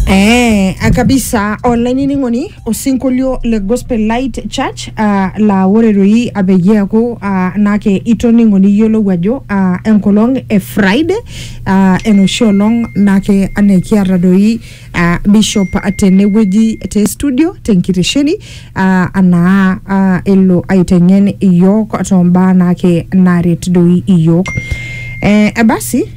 Eh, ah, kabisa olainining'oni osinkolio le gospel light church ah, laa ore doi apeyie eaku ah, naake itoning'o niyiolou ajo ah, enkolong e friday ah, enoshi olong naake anaa ekiata doi ah, bishop tenewueji te studio tenkitesheni ah, anaa ah, elo aiteng'en iyiok tombaa naake naret doi iyiok eh, basi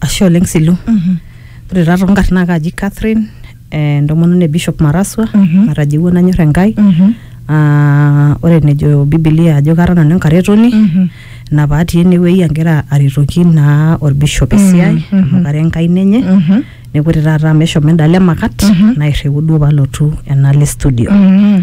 Ashe oleng Silu. Ore taa toonkarn naa kaaji Catherine eh, entomononi e Bishop Maraswa Mhm. natajeuo nanyor Enkai. Mhm. Ah, ore enejo Biblia ajo kara nanu enkaretoni Mhm. ina paatii enewueji agira aretoki naa olbishop esiai Mhm, mhm. amu kara enkaina enye. Mhm. Neeku ore taata amu eshomo endalo emakat Mhm. nairriu duo palotu enaalo e studio. Mhm.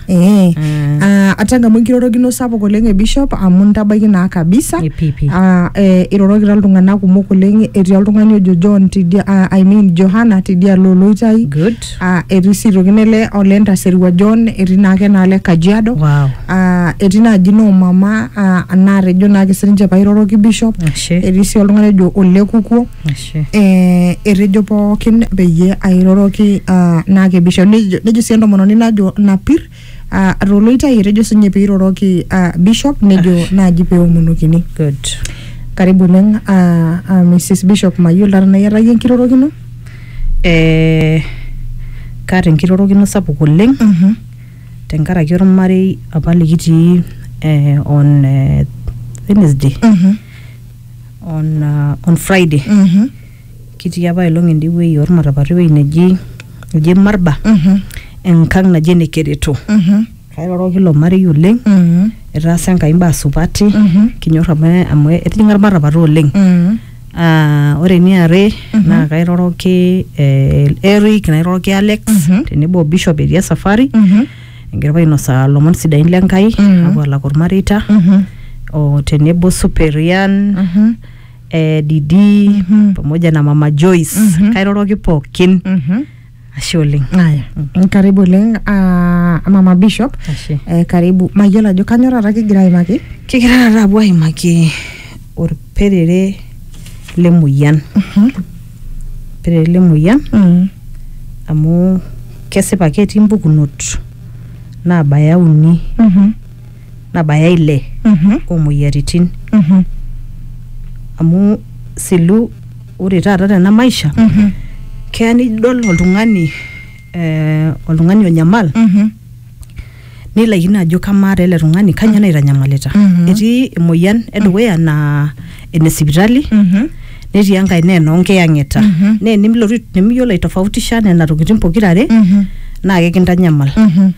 Ee, ah, atanga amu enkirorokino sapuk oleng e bishop amu ntabaiki naa kabisa Ipipi. Ah, eh, irorokita iltung'anak kumok oleng etii oltung'ani ojo John tidia ah, I mean Johanna tidialo oloitai Good. Ah, etii sii toki nele ole Ntaserua John etii naake naale Kajiado Wow. Ah, etii naaji noo mama ah, naatejo naake sininche pairoroki bishop Ashe. etii sii oltung'ani ojo ole Kukuo Ashe. Che. eh, etejo pookin peyie airoroki ah, naa kebisho nejo nejo sii entomononi najo napir ah, toloitai etejo sinye peiroroki ah, bishop nejo naaji peomonokini Good. karibu oleng ah, ah, mrs bishop mayiolo taa tenaa iyatayie enkirorokino Eh, kaata enkirorokino sapuk oleng Mhm. tenkaraki ormarei apa likitii eh, on eh, Wednesday Mhm. on, uh, on friday Mhm. kitii apa ailong ende wueji ormatapata ewueji neji eji marba Mhm. enkang naji ene kereto Mhm. kairoroki ilo marei oleng Mhm. etaasa enkai mbaa supati Mhm. kinyor amu amu etijinga ormatapata oleng Mhm. Ah, ore eniare naa kairoroki eh, Eric nairoroki Alex Mhm. tenebo o Bishop etii esafari Mhm. egira ainosaa lomon sidain le Nkai Mhm. apuo alak olmareita Mhm. o tenebo Superian Mhm. eh, Didi Mhm. pamoja na Mama Joyce Mhm. kairoroki pookin Mhm. ashe oleng. Aya, karibu oleng ah, mama bishop Ashe. eh, karibu mayiolo ajo kanyo taata kigira aimaki Kigira taata apuo aimaki olperere lemoyian. Mhm. ele moyian Mm. amu kesipa ketii mpukunot naabaya uni Mhm. nabaya ile Mhm. oomoyiaritin Mhm. amu silu ore taata tena maisha Mhm. keya nidol oltung'ani eh, oltung'ani onyamal Mhm. nilaikino ajo kamaa taa ele tung'ani kanyoo naitanyamalita Mhm. etii emoyian edukuya naa ene sipitali Mhm. netii enkae naa enoonkiyang'eta Mhm. naa enimilotu nimiyiolo aitofautisha nena tokitin pokirare Mhm. naa kekintanyamal Mhm.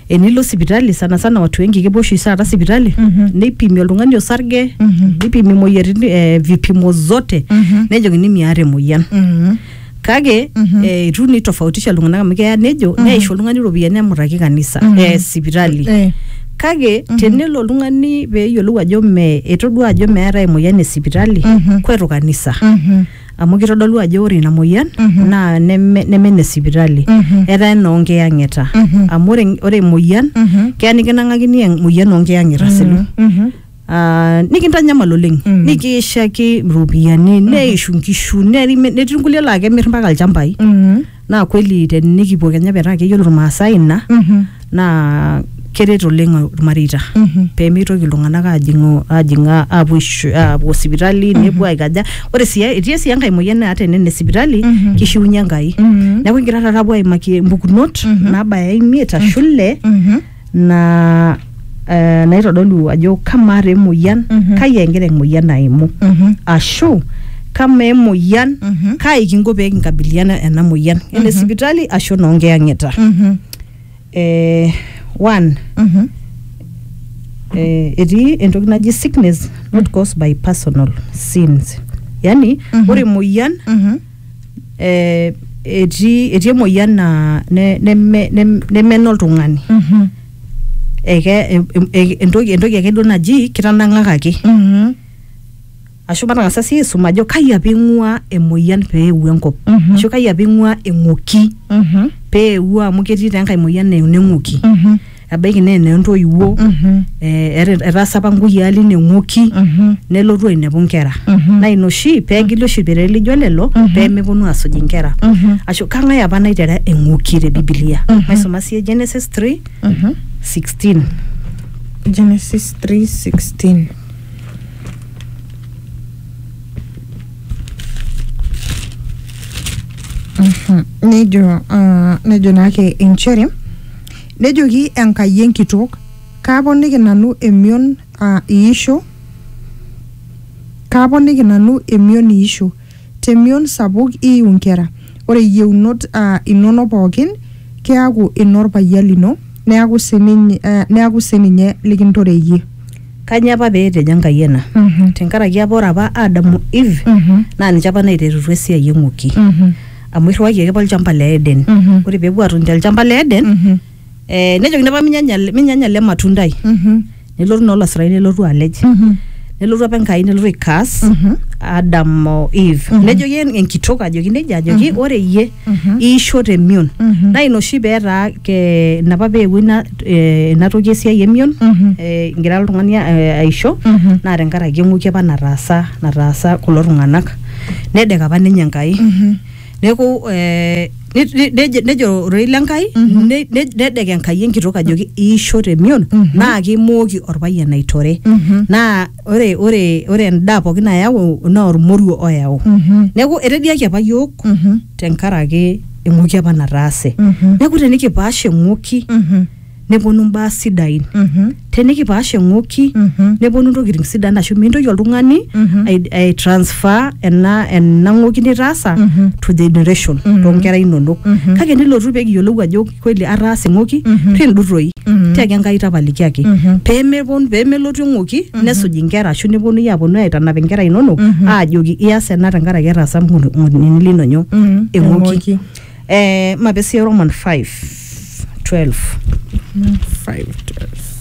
enilo sipitali sana sana watu wengi kepuo oshi taata sipitali Mhm. neipimi oltung'ani osarge Mhm. neipimi imoyiaritin eh, vipimo zote Mhm. nejokini miata emoyian Mhm. kake Mhm. eh, itu nitofautisha iltung'anak amu keya nejo Mhm. neisho oltung'ani iropiyiani nemutaki kanisa Mhm. eh, sipitali Eh, kake Mhm. tenelo oltung'ani peeyiolou ajo me etodua ajo meetae emoyian e sipitali Mhm. kwetu kanisa mhm, amu kitodolu ajo ore ina moyian Mhm. naa neme neme ene sipitali mhm, etaa ena oonkiyang'ita Mhm. amu ore ore emoyian mhm, keya nikinang'akini emoyian oonkiyang'ita selo mhm, mhm. Ah, nikintanyamal oleng Mm. nikiishaki iropiyiani neishu nkishu nerime- netii nkulie laa kemir mpaka ilchambai Mhm. naa kweli tenikipuo kenya petaa keyiolo irmaasai ina Mhm. naa keret oleng irmareita Mhm. pemeitoki iltung'anak ajing'u ajing'a apuo aishu- apuo sipitali nepuo aikaja ore sii etii sii enkae moyian naata ene ne sipitali Mhm. kishiunye enkai Mhm. neeku kigira taata apuo aimaki mpukunot Mhm. nabaya imiet ashu ile Mhm. na eh, naitodolu ajo kamaa taa emoyian Mhm. kai egira emoyian aimu Mhm. ashu kama emoyian Mhm. kai kinko pee kinkabiliana ena moyian ene sipitali ashu noonkiyang'ita Mhm. eh, one Mhm. eh, etii entoki naji sickness not caused by personal sins yani Mhm. ore emoyian Mhm. eh, etii etii emoyian naa ne- neme- nem- nemena oltung'ani Mhm. eke em- em- e- entoki entoki ake duo naji kitanang'akaki Mhm. ashu matang'asa sii aisum ajo kai apa ing'ua emoyian peewuo enkop Mhm. ashu kai apa ing'ua eng'oki Mhm. peewuo amu ketii taa enkae moyian naa eneng'oki Mhm. ebaiki naa enoo entoiwuo Mhm. eh, ete- etaasa apa nkuyiaa line ng'oki Mhm. nelotu ainepu nkera Mhm. naa ina oshi peegili oshi ilperere lijo lelo Mhm. peemeponu aasuj inkera Mhm. ashu kang'ae apa naitera eng'oki te bibilia Mhm. maisuma sie genesis 3 Mhm. 16 Genesis 3:16. Mhm. Nejo ah, nejo naake inchere Nejoki Enkai enkitook, Kaaponiki nanu emion aa iisho, kaaponiki nanu emion iisho, te mion sapuk iiu nkera, ore iyieunot aa inono pooki keaku ino lpayian lino, neaku si ninye likintore iyie. Kanyoo apa pee etejo Enkai ena? Tenkaraki apa ore apa Adam o Eve naa ninche apa naiterutua esiai eng'uki. amu irriwayie ake apa olchamba le Eden Mhm. ore peepuo aatoni tolchamba le Eden Mhm. eh, nejokini apa minyanya ele- minyanya ele matundai Mhm. nelotu naa olasurai nelotu alej Mhm. nelotu apa enkai nelotu aikaas Mhm. Adam o Eve Mhm. nejoki en- enkitok ajoki nejia ajoki ore iyie Mhm. iisho temion Mhm. naa ina oshi peetaa ke- ina apa peewuo ina eh, ina toki esiai emion Mhm. eh, igira oltung'ani eh, aisho Mhm. naa tenkaraki eng'uki apa nataasa nataasa kulo tung'anak nedek apa ninye enkai neeku eh, ne- ne- nejo- nejo ororei le nkai ne- ne- nedek enkai enkitok ajoki iisho temion naa kimooki orpayian aitore naa ore ore ore endaa pookin nayau naa ormoruo oyau neeku etediaki apa yiok tenkaraki eng'oki apa nataase neeku tenikipaash eng'oki neponu imbaa sidain Mhm. tenikipaash eng'oki Mhm. neponu intokitin sidan ashu mintoki oltung'ani Mhm. ai- ai transfer ena ena ng'oki nitaasa Mhm. to generation Mhm. toonkera inonok Mhm. kake nilotu pee kiyiolou ajo kweli ataasa eng'oki Mhm. pindurroi Mhm. tiaki Enkai tapalikiaki Mhm. peemepon peemelotu eng'oki nesuj inkera ashu neponui aponu aitanap inkera inonok Mhm. aajoki ias ena tenkaraki etaasa ng'o- ng'onini linonyo Mhm. eng'oki Eng'oki. Eh, mapesi Roman 5 12 5 12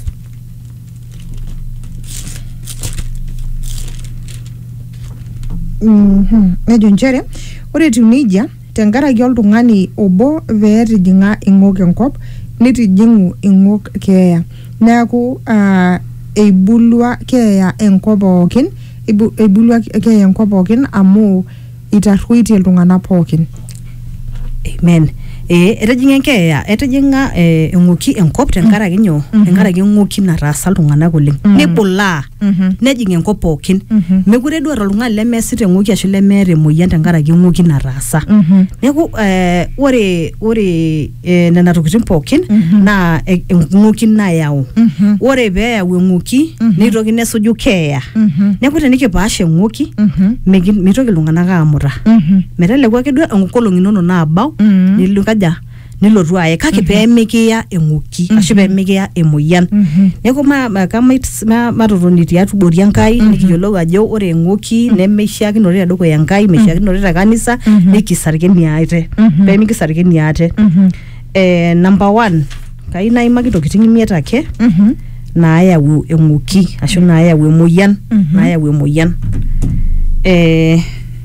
Mhm. nejo nchere ore etiu nejia tenkaraki oltung'ani obo pee etijing'a ing'ok enkop nitijing'u ing'ok keeya neeku ah, eibulua keeya enkop pookin eibu- eibulua keeya enkop pookin amu itarruoitie iltung'anak pookin amen Eh, etijing'a enkeeya etijing'a eh, eng'oki enkop tenkaraki nyoo tenkaraki eng'oki nataasa iltung'anak oleng nebulaa nejing enkop pookin mekure duo eeta oltung'ani lemeesita eng'oki ashu lemeeta emoyian tenkaraki eng'oki nataasa neeku eh, ore ore eh, nena tokitin pookin Mhm. naa e- eng'uki nayau Mhm. ore pee eyau eng'uki Mhm. neitoki nesuju keeya Mhm. neeku tenikipaasha eng'uki Mhm. migi- mitoki iltung'anak aamuta Mhm. meteleku ake duo enkolong inono naabau Mhm. nilo kaja nilotu aye kake pee mikiya eng'uki ashu pee mikiya emoyian Mhm. neeku ma- ma- kamait ma- matotoni tiatubori enkai nikiyiolou ajo ore eng'oki nemeishiakinore tedukuya enkai meishiakinore te kanisa nikisarkeni aate pemikisarkeni aate eh, number one kai naimaki intokitin imiet ake naayau eng'oki ashu naayau emoyian naayau emoyian eh,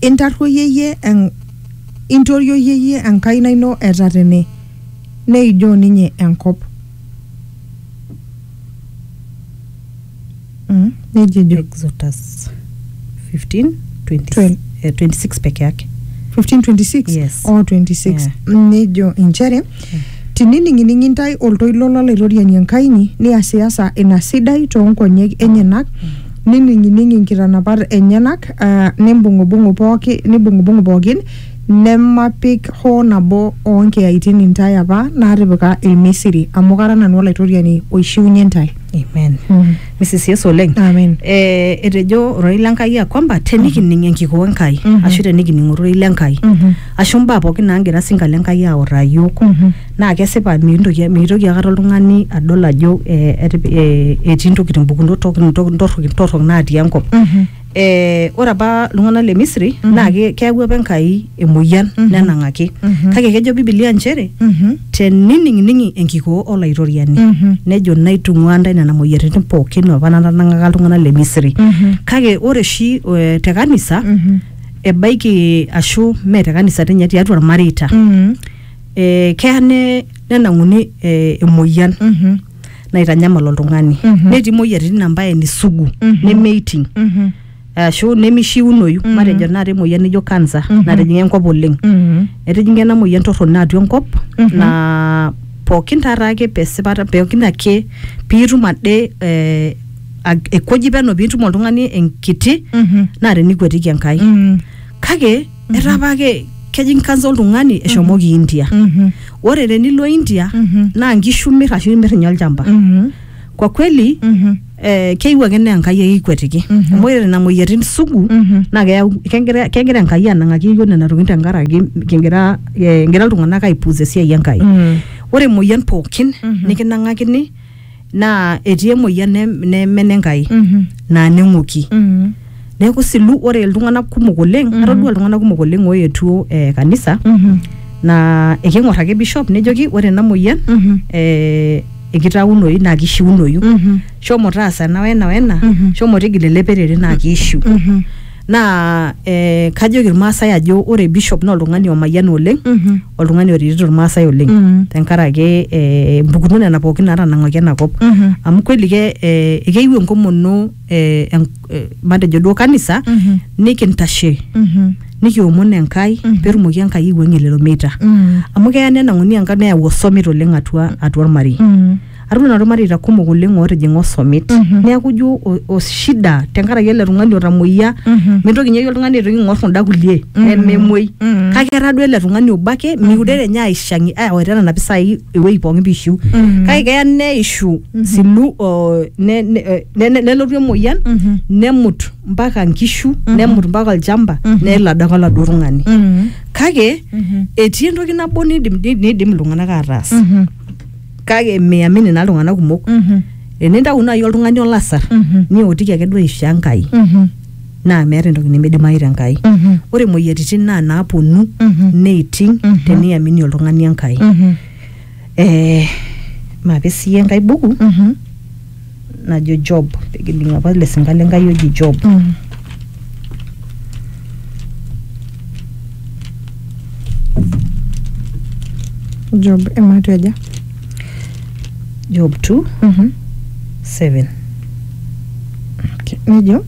Intarruoyie en, intorioyie iyie enkaina ino e tatene, neijoo ninye enkop. Mm, neijia ejo. Exodus 15, 20, Twelve. eh, 26 peke yake. 1526 Yes. o 26 Yeah. Mm, nejo inchere tinining'ining intae oltoilo lolaitoriani Enkai inyi niasiasa ina sidai toonkonyek enyenak Nining'ining inkitanapat enyenak, aa nimbung'ubung'u pooki, nibung'ubung'u pookin, nemapik hoo nabo oo nkiyaitin intae apa naatipika Ilmisiri, amu kara nanu Olaitoriani oishiunye intae. Amen. Mm. Mrs. Yesu oleng. Amen. Eh, etejo ororei le Nkai ya kwamba tenikining enkikoo Enkai Mhm. ashu tenikining ororei le Nkai Mhm. ashu mbaa pookin naagira sinka le Nkai autaa iyiook Mhm. naa kesipa mikintoki mitoki aikata oltung'ani adol ajo eh, etip- eh, etii intokitin mpukunot tok- ntokitin torrok torrok natii enkop eh, ore apa iltung'anak le misri naa ke- keyau apa enkai emoyian nenang'aki kake kejo bibilia nchere tenining'ining'i enkikoo olaitoriani nejo naitung'ua ntae nena moyiaritin pookin apa natanang'aka iltung'anak le misri kake ore oshi eh, te kanisa ebaiki ashu mee te kanisa tinye tiatua irmareita eh, keya ne- nenang'uni eh, emoyian Mhm. naitanyamal oltung'ani Mhm. netii moyiaritin ambaye nisugu Mhm. nemeiting Mhm. ashu nemishiunoyu Mhm. matejo naata emoyian nijo kansa Mhm. natijing'a enkop oleng Mhm. etijing'a ena moyian torrono atua enkop Mhm. na pookin taata ake pesipata pookin ake piitum ade eh, ag- ekueji peno piitum oltung'ani enkiti Mhm. naa tenikuetiki enkai Mhm. kake etaa apa ke- kejing kansa oltung'ani eshomoki india Mhm. ore tenilo india Mhm. naa nkishu mir ashu imir ninye olchamba Mhm. kwa kweli Mhm. eh, keyieu ake naa enkai ake ikwetiki Mhm. amu ore nena moyiaritin sugu Mhm. naa keyau kegira kegira enkai anang'aki iyiok nena tokitin tenkaraki kigira eh, egira iltung'anak aipuus esiai enkai Mm. ore emoyian pookin Mhm. nikinang'akini naa etii emoyian ne- neme nenkai Mhm. naa neng'oki Mhm. neeku silu ore iltung'anak kumok oleng Mhm. atodua iltung'anak kumok oleng oetuo eh, kanisa Mhm. naa eking'or ake bishop nejoki ore ena moyian Mhm. eh, ekitaunoyu naa kishiunoyu Mhm. shomo taasa ena wena wena Mhm. shomo tigila ele perere naa kiishiu Mhm. naa eh, kajoki irmaasai ajo ore bishop naa oltung'ani omayiana oleng Mhm. oltung'ani oretito irmaasai oleng Mhm. tenkaraki eh, mpukunot nena pookin naatanang'aki ena kop Mhm. amu kweli ke eh, keyieu enkomono eh, en- eh, matejo duo kanisa Mhm. nikintashe Mhm. nikiomon enkai Mhm. peetumoki enkai aiwuang'ie lelo meita Mhm. amu keya nenang'uni enkai neyau osomit oleng atua atua ormarei Mhm. atum nanu irmareita kumok oleng ootijing'a osomit Mhm. neeku ijo o- o- shida tenkaraki ele tung'ani otamoyia Mhm. mintoki ninye oltung'ani aitoki ing'or kunda kulie Mhm. nememuoi Mhm. kake etaa duo ele tung'ani obo ake miure ninye aishang'i awaita nena pisai ewueji pookin piishiu Mhm. kake keya neishu silu o, ne- ne- eh, ne- ne- nelotu emoyian Mhm. nemut mpaka nkishu nemut mpaka olchamba Mhm. nelo adake oladuo tung'ani Mhm. kake Mhm. etii entoki nabo nidim nidim iltung'anak ataas Mhm. kake miamini naa iltung'anak kumok Mhm. enintau naaji oltung'ani olasar Mhm. niotiki ake duo aisho enkai Mhm. naa meeta entoki nimidimayu te nkai Mhm. ore imoyiaritin naa naaponu Mhm. neiting Mhm. teniamini oltung'ani enkai Mhm. eh, mape siyie enkai buku Mhm. najo job pekining apa ele sinka le nkai oji job Mm. Job ematu aja. job 2 Mhm. 7 Okay. Nejo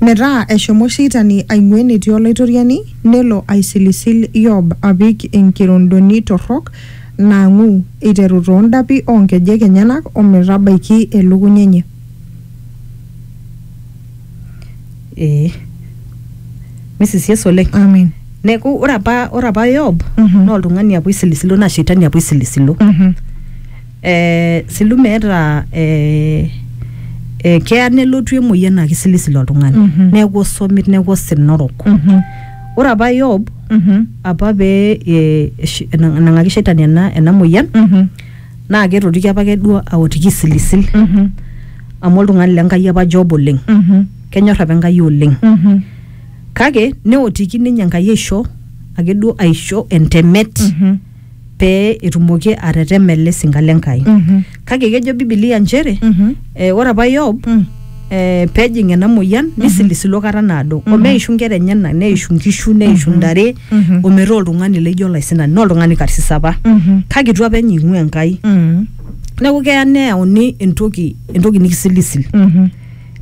metaa eshomo sheitani aing'ua enetii olaitoriani nelo aisilisil Yob apik enkirondoni torrok naang'u eiteru too ndapi oo nkejek enyenak o metabaiki elukunya enye. Ee. Missis Yesu oleng. Amen. Neeku ore apa ore apa Yob Mhm. naa oltung'ani apa oisilisilo naa shetani apa oisilisilo. Mhm. Eh, silu meeta eh, eh, keya nelotu emoyian naa keisilisilo oltung'ani. Mhm. Neeku osomit, neeku osina orok. Mhm. ore apa yob Mhm. apa pee eh, esh- ena- enang'aki shaitani ena, ena moyian Mhm. naa ketotoki apa ake duo aotiki isilisil Mhm. amu oltung'ani le nkai apa job oleng Mhm. kenyor apa enkai oleng Mhm. kake neotiki ninye enkai aisho ake duo aisho entemet Mhm. pee etumoki atetema ele sinka le Nkai. Mhm. Kake kejo Biblia nchere Mhm. eh, ore apa Yob Mm. eh, pejing ena moyian nisilisilo kata naado omeishu nkera enyenak neishu nkishu neishu ntare Mhm. ometaa oltung'ani leijo olaisinani naa oltung'ani karsis apa Mhm. kake itu apa enye ing'ua Enkai Mhm. neeku keya neyauni entoki entoki nikisilisil Mhm.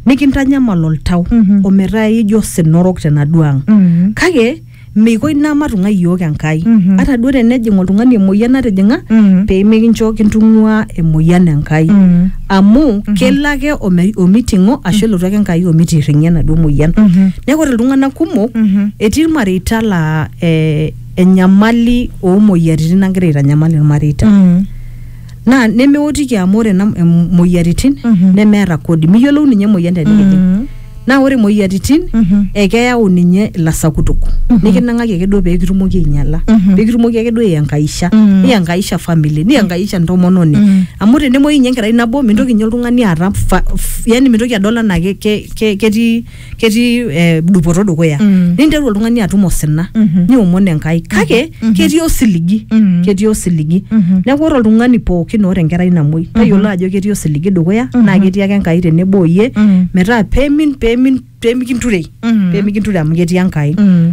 nikintanyamal oltau Mhm. ometaa ijo osina orok tenaduo ang Mhm. kake meiko ina matung'ai iyiook Enkai Mhm. ata duo tenejing oltung'ani emoyian natijing'a Mhm. pee mikincho kintung'ua emoyian Enkai Mhm. amu kelo ake ome- omiting'o ashu elotu ake Enkai omitirring'ie enaduo moyian Mhm. neeku ore iltung'anak kumok Mhm. etii ilmareita laa eh, enyamali oomoyiaritin nagira aitanyamal ilmareita Mhm. naa nemeotiki amu ore ena em- moyiaritin Mhm. nemeeta kodi miyiolou ninye emoyian tenikijing Mm. naa ore moyiaritin Mhm. ekeyau ninye ilasakutuk nikinang'aki ake duo peekitumoki ainyala Mhm. peekitumoki ake duo aiangaisha Mhm. niangaisha family niangaisha ntomononi Mhm. amu tenemuoyu ninye enkerai nabo mintoki ninye oltung'ani aata fa- f- yani mintoki adol anaa ke- ke- ke- ketii ketii eh, dupoto dukuya Mm. ninteru oltung'ani atum osina Mhm. niomon enkai kake ketii osiligi Mhm. ketii osiligi Mhm. neeku ore oltung'ani pookin oota enkerai namuoi tayiolo ajo ketii osiligi dukuya naa ketii ake enkai tenebo oyie Mhm. metaa pemin pemin pemikinturei Mhm. pemikinturei amu ketii enkai Mm.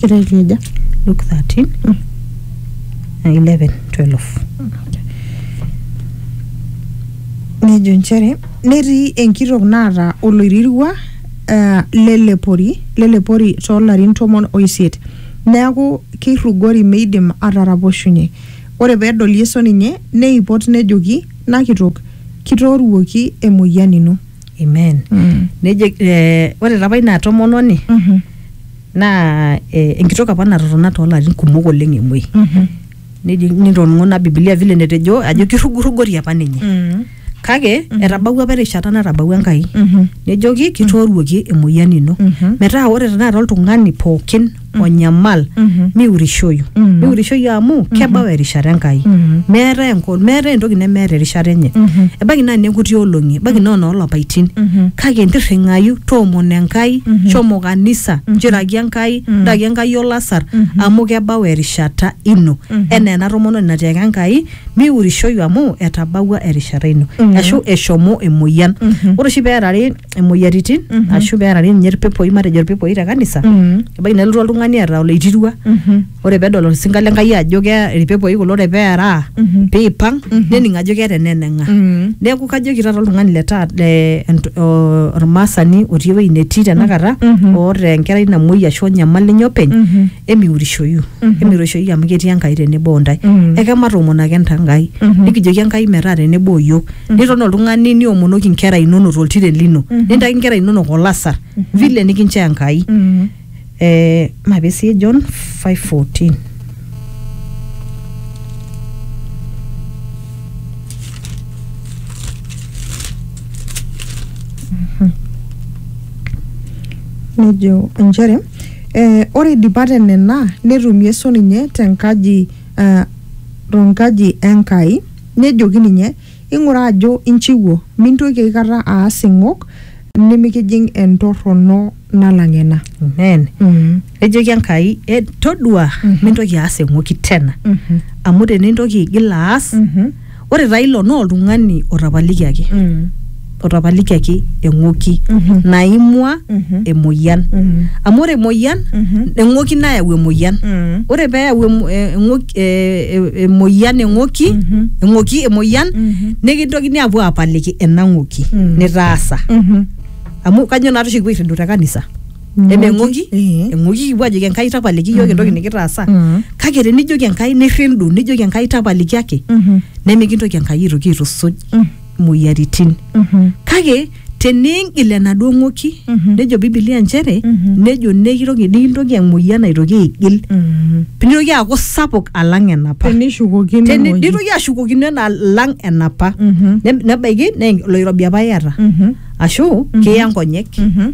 Kitejo aja? Luke 13, Mm. uh, 11, 12. Nejo nchere netii enkitok naata oloirirua uh, lelepori lelepori toolarin tomon oisiet neaku keirrugori meidim ataraposhunye. Ore pedol Yesu ninye neipot nejoki, Nakitok, kitooruoki emoyian ino. amen Mm. nejo eh, ore tapa ina tomononi Mhm. naa eh, enkitok apa natotona toolarin kumok oleng emuoi Mhm. nejo nitoning'o na bibilia vile netejo ajo kirrugurrugori apa ninye Mm. kake etabawua apa erishata natabawua enkai Mhm. nejoki kitooruoki emoyian ino Mhm. metaa ore tenakata oltung'ani pookin onyamal Mhm. miurishoyu Mhm. miurishoyu amu kebau erishata enkai Mhm. meetae enko- meetae entoki nemeeta erishata enye Mhm. ebaiki naa nekuti olong'i ebaiki naa noolapaitin Mhm. kake intirring'ayu toomono enkai Mhm. shomo kanisa Mhm. njiraki enkai Mhm. ndaki enkai olasar Mhm. amu kebau erishata ino Mhm. enaa ena tomononi natiaka enkai miurishoyu amu etabawua erishata ino Mhm. ashu eshomo emoyian Mhm. ore oshi peerari imoyiaritin Mhm. ashu pearari ninye irpepoi matejo irpepoi te kanisa Mm. ebaiki nelotu oltung'ani eeta oloitirua Mhm. ore pedol orsinka le Enkai ajo kea irpepoi kulo ore pearaa Mhm. piipang Mhm. nening ajo keeta eneneng'a Mm. neeku kajoki taata oltung'ani le taata le ent- o- ormaasani otii ewueji netii tenakata Mhm. oota enkerai namuoi ashu onyamal ninye openy Mhm. emiurishoyu emiurishoyu amu ketii enkai tenebo ontae Mhm. ekematoomon ake nta nkai Mhm. nikijoki enkai metaa tenebo oyiok niton oltung'ani niomonoki inkera inonok toltiren lino Mhm. nintaki inkera inonok olasar vile nikinchoo enkai Mhm. eh, mape sii john 514 nejo inchere E, ore eidipa te nena netum Yesu ninye te nkaji e, to nkaji e Nkai nejoki ninye, Ing'ura ajo inchiwuo, mintoki aikata aas ing'ok nimikijing entorrono nalang ena. Amen. Mm. Nejoki Enkai, "E, todua, mintoki aas eng'oki tena. Mhm. Amu tenintoki aigil aas, Mhm. ore taa ilo naa oltung'ani otapalikiaki Mm. otapalikiaki eng'oki Mhm. naimua Mhm. emoyian Mhm. amu ore emoyian Mhm. eng'oki nayau emoyian Mm. ore peeyau emo- eh, eng'oki- eh, eh, emoyian eng'oki Mhm. eng'oki emoyian Mhm. nikintokini apuo apaliki ena ng'oki Mm. nitaasa Mhm. amu kanyo naa toshi kipuo airridu te kanisa Mm. emeng'oki Eh. eng'oki kipuo ajoki enkai tapaliki iyiook entoki nikitaasa Mm. kake tenijoki enkai nirrindu nijoki enkai tapaliki ake Mhm. nemikintoki enkai aitoki aitusuj Mm. moyiaritin Mhm. kake teniingil enaduo ng'oki Mhm. nejo bibilia nchere Mhm. nejo nekitoki nikintoki emoyian aitoki aigil Mhm. nitoki aaku sapuk alang enapa tenishukokino Teni- ewueji. nitoki ashukokino ena alang enapa Mhm. Ne- nebaiki naa oloirobi apa iyata Mhm. ashu kiya nkonyek Mhm.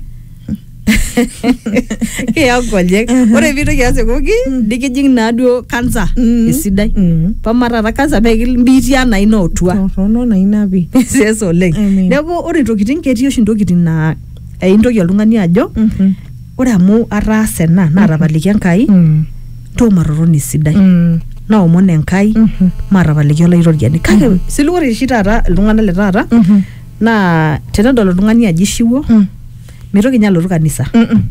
kiya nkonyek Mhm. ore piitoki aas ewoki nikijing naaduo kansa Mm. esidai Mm. pama taata kansa pee kimbiitia naa ina otua Torrono na ina pi. siasa oleng Amen. neeku ore ntokitin ketii oshi ntokitin naa eintoki oltung'ani ajo Mhm. ore amu ataasa ena naatapaliki enkai Mm. ntoo matoroni esidai Mm. naomon enkai Mhm. maatapaliki olaitoriani kake sili ore oshi taata iltung'anak le taata Mhm. naa tenedol oltung'ani ajo ishiwuo Mm. mitoki ninye alotu kanisa Mm-mm.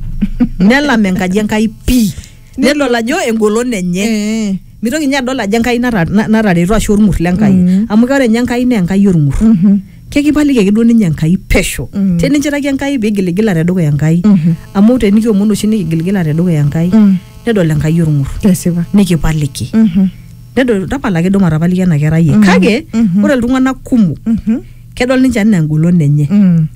nelam enkaji enkai pii nedol ajo engolon enye Eh. mitoki ninye adol ajo enkai nata- na- natareto ashu orng'ur le enkai Mm. amu ore ninye enkai naa enkai orng'ur Mhm. kekipaliki ake duo ninye enkai pesho Mm. teninchiraki enkai pigiligila tedukuya enkai Mhm. amu tenikiomon oshi nikigiligila tedukuya enkai Mm. nedol enkai orng'ur Kesipa. nikipaliki Mhm. nedol tapala ake duo matapaliki ena kerai e kake ore iltung'anak kumok Mhm. kedol ninche anaa engolon enye Mm.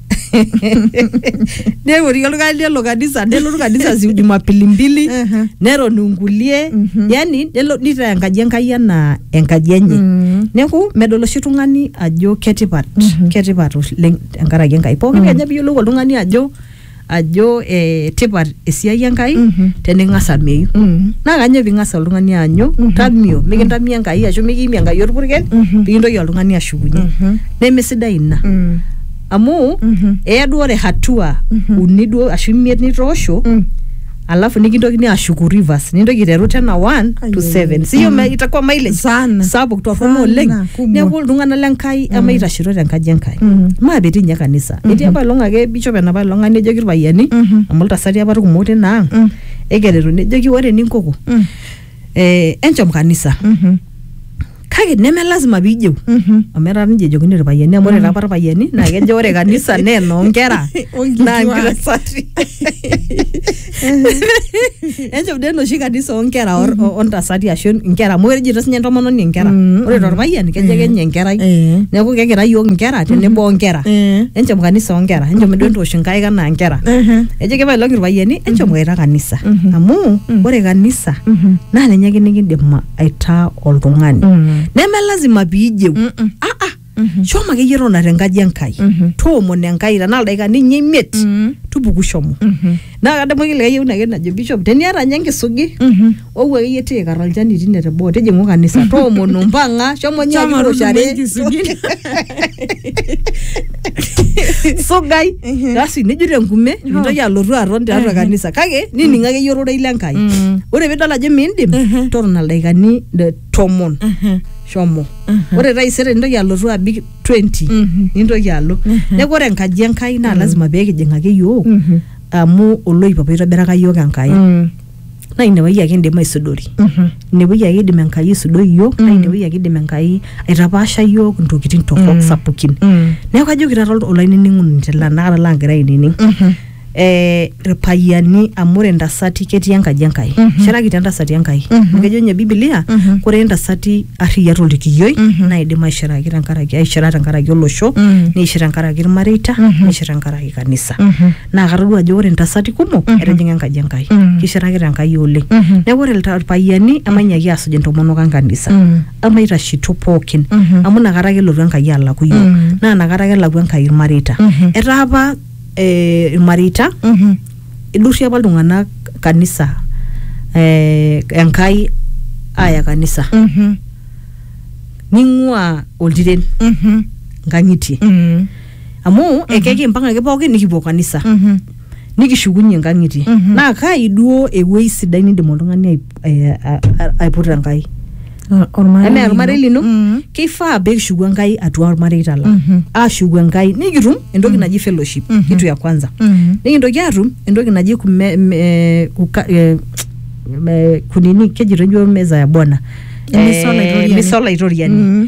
neworie oltung'ani lelo kanisa nelotu kanisa si jumapili mbili Ehe. neton inkulie Mhm. yani nelo nitaa enkaji enkai anaa enkaji enye Mm. neeku medol oshi tung'ani ajo ketipat ketipat oleng tenkaraki enkai pookin kenya piyiolou oltung'ani ajo ajo eh, tipat esiai enkai Mhm. tening'as ameyu Mm. naa kanyoo ping'as oltung'ani aanyu tamio mikintamio enkai ashu mikiimie enkai orpurkel Mhm. pikintoki oltung'ani ashukunye Mhm. nemesidai ina Mm. amu Mhm. eya duo ore hatua Mhm. uni duo ashu imiet nitoosho Mm. alafu nikintokini ashuku rivers nintoki aiteru tena 1 to Ai, 7 siyo me- itakuwa mileage Sana. sapuk torrono Sana, oleng kumok. neeku iltung'anak le nkai emaitashito te nkaji enkai Mhm. maapetii ninye kanisa etii apa ilong ake bishop enapa ilong ang nejoki irpayiani Mhm. amu iltasati apa irkumok tina ang Mm. ekeretu nejoki ore eninkoko Mm. eh, enchom kanisa Mhm. kake neme lazima piijeu Mhm. amu etaa ninche ejokini irpayiani amu ore taapa irpayiani naa kejo ore kanisa naa enoonkera Onkituak. naa nkitasati enchom dee enoshi kanisa oonkera or- o- ontasati ashu nkera amu ejito sinye entomononi nkera Mm, ore mm. torpayian kejo ake nye enkerai Eh. neeku kegira yiok nkera tenebo onkera Eh. enchom kanisa onkera enchom duo entoosh nkaik anaa nkera Ehe. Ejo kepae looki irpayiani enchomoita kanisa Mhm. amu Mhm. ore kanisa Mhm. naa ninye ake nikindim aitaa oltung'ani Mm. neme lazima piijeu Mm-mm. ah ah Mhm. shomo akeyie tona tenkaji enkai Mhm. toomon enkai tenaa ildaikani ninye imiet Mm. tupuku shomo Mhm. naa kadamu ake likae yieu ake najo bishop teniata ninye enkisugi Mhm. Ou akeyie tiikar olchani tine teboo tijing'u kanisa toomono mpang'a shomo nyoo Shomo kiwuoshare tudumu enkisugin. sugai basi nijut enkume nintoki alotu aton tiatua kanisa kake nining akeyie ororei le Nkai Mm. ore piidol ajo miindim Mhm. totona ildaikani de- tomon Mhm. shomo Mhm. ore taisere nintoki alotu abik 20 Mhm. nintoki alo neeku ore enkaji enkai naa lazima pee kijing ake yiok Mhm. amu oloip apa oitobiraka yiok enkai Mm. naa inewueji ake indim aisudori inewueji ake idim enkai aisudoi iyiok naa inewueji ake idim enkai aitapaasha iyiok intokitin torrok sapukin neeku kajoki taata ol- olainining'oni tele anakata laagira ainining eh, irpayiani amu ore intasati ketii enkaji Enkai ishirakitia intasati Enkai amu kejo ninye bibilia kore intasati arriyia tolkiyioi naidim aishiraki tenkaraki aishira tenkaraki olosho neishir tenkaraki irmareita neishir tenkaraki kanisa naa katodua ajo ore intasati kumok Mhm. etijing'a enkaji enkai Mhm. kishirakita enkai oleng Mhm. neeku ore ilta- irpayiani emainyiaki aasuj intomonok enkanisa Mm. emaitashito pookin Mhm. amu inakata ake elotu enkai alaku yiok Mhm. naa inakata ake elaku enkai irmareita Mhm. etaa apa eh, irmareita Mhm. idurrie apa iltung'anak kanisa eh, enkai aaya kanisa Mhm. ning'ua oltiren Mhm. nkang'itie Mm. amu mm -hmm. ekekimpang ake pookin nikipuo kanisa mm -hmm. nikishukunye nkang'itie mm -hmm. naa kai duo ewuei sidai nindim oltung'ani aip, eh, a- a- aiputa enkai enaa ormarei lino Mhm. keifaa peekishuku enkai atua ormareita lang Mhm. aashuku enkai nikitum entoki naji fellowship Mhm. kitu ya kwanza Mhm. nikintoki atum entoki naji kume, me, kuka, eh, me, kunini kejito njo meza ya bwana Emisa Eh, olaitoriani. misa olaitoriani Mhm.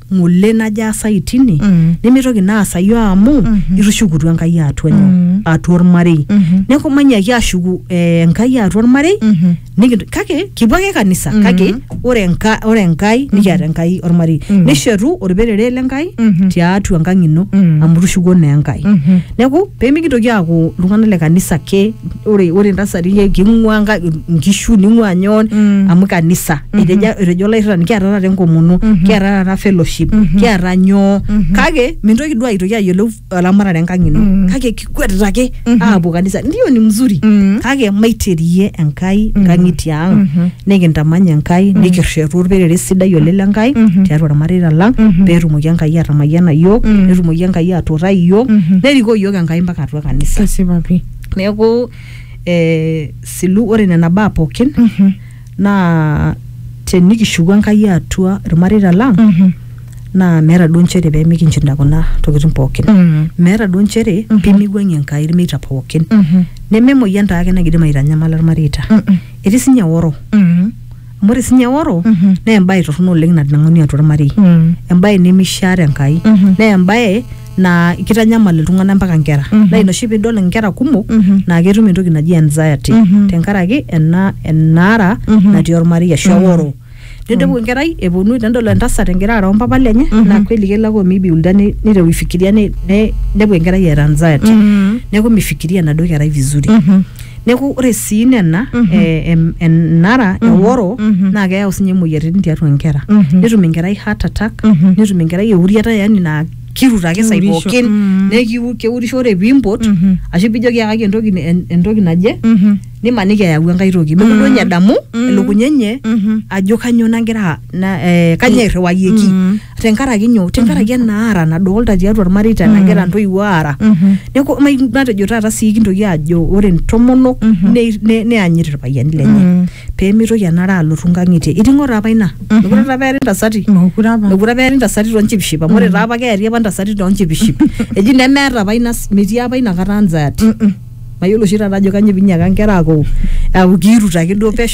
ng'ole najo aasayu tine Mm. nemeitoki naa aasayu amu Mhm. itushukutua enkai atua nyoo Mm. atua ormarei Mhm. neeku manyaki ashuku eh, enkai atua ormarei Mhm. nikinto- kake kipuo ake kanisa Mhm. kake ore enka- ore enkai nikiata enkai ormarei Mhm. nishetu orperere le nkai Mhm. tiatua enkang ino Mhm. amu itushukuo naa enkai Mhm. neeku pemikintoki aaku iltung'anak le kanisa ake ore ore ntasati le king'ua nka- nkishu ning'ua nyon Mm. amu kanisa etejo etejo olairrirani kiata taata enkomono kiata taata fellowship kiata nyoo kake mintoki duo aitoki ayiolou eramatare enkang ino Mm. kake kikwetita ake aapuo kanisa ndio ni mzuri Mm. kake maiterie enkai nkang'itie ang Mhm. nikintamany enkai nikirretu orperere sidai oleng le nkai Mhm. tiatua irmareita lang Mhm. peetumoki enkai atamayiana iyiook Mm. netumoki enkai atuutai iyiook Mhm. nerikoo iyiook enkai mpaka atua kanisa kesipa pii neeku eh, silu ore nena baa pookin Mhm. naa tenikishuku enkai atua irmareita lang Mhm. naa meeta duo nchere pemikinchinda kuna tokitin pookin Mm. meeta duo nchere Mhm. pimiwuang'ie enkai irmeita pookin Mhm. nememoyian taake nakidim aitanyamala irmareita Mm-mm. etii sinye oro Mm. amu ore sinye oro Mhm. naa embae torrono oleng natanang'uni atua ormarei Mm. embae nemishaa tenkai Mhm. naa embae naa kitanyamal iltung'anak mpaka nkera Mhm. naa ina oshi piidol inkera kumok Mhm. naa ketum entoki naji anxiety Mhm. tenkaraki ena enaara Mhm. natii ormarei ashu Mhm. oro nidumu enkerai eponu tenedol entasat egira aara ompapa lenye Mhm. naa kweli kelo ake omibiulda ni- niteru aifikiria ni- ne- nepuo enkerai eeta anxiety Mm. neeku mifikiria enaduo kerai vizuri Mhm. neeku ore sii nena Mhm. eh, em- enara Mhm. eworo Mhm. naa keyau sinye imoyiaritin tiatua inkera Mhm. netum enkerai heart attack Mhm. netum enkerai euriata yani naa kirut ake sai Keurisho. pookin Mhm. nekiu- keurisho ore piimpot Mhm. ashu pijoki yakaki entoki ni- en- entoki naje Mhm. nimaniki eyau enkae toki Mhm. mekure ninye edamu Mhm. elukunya enye Mhm. ajo kanyoo nagira na- eh, kanyoo irriwayeki Mhm. tenkaraki nyoo tenkaraki enaara nadolta tiatua irmareita nagira ntoiwuo aara Mhm. neeku mai- matejo taata sii kintoki ajo ore ntomonok ne- ne- neanyit irpayiani lenye Mhm. pee mitoki enara alotu nkang'itie iting'o taa apa ina mekure taa apa eari ntasati Mokure apa. mekure apa eari ntasati toonchipiship amu ore taa apa keari apa ntasati toonchipiship eji nemeeta apa ina metii apa ina kata anxiety Mm-mm. mayiolo oshi taata ajo kanyo pinyiaka nkera aaku aaku kiirut ake duo pesho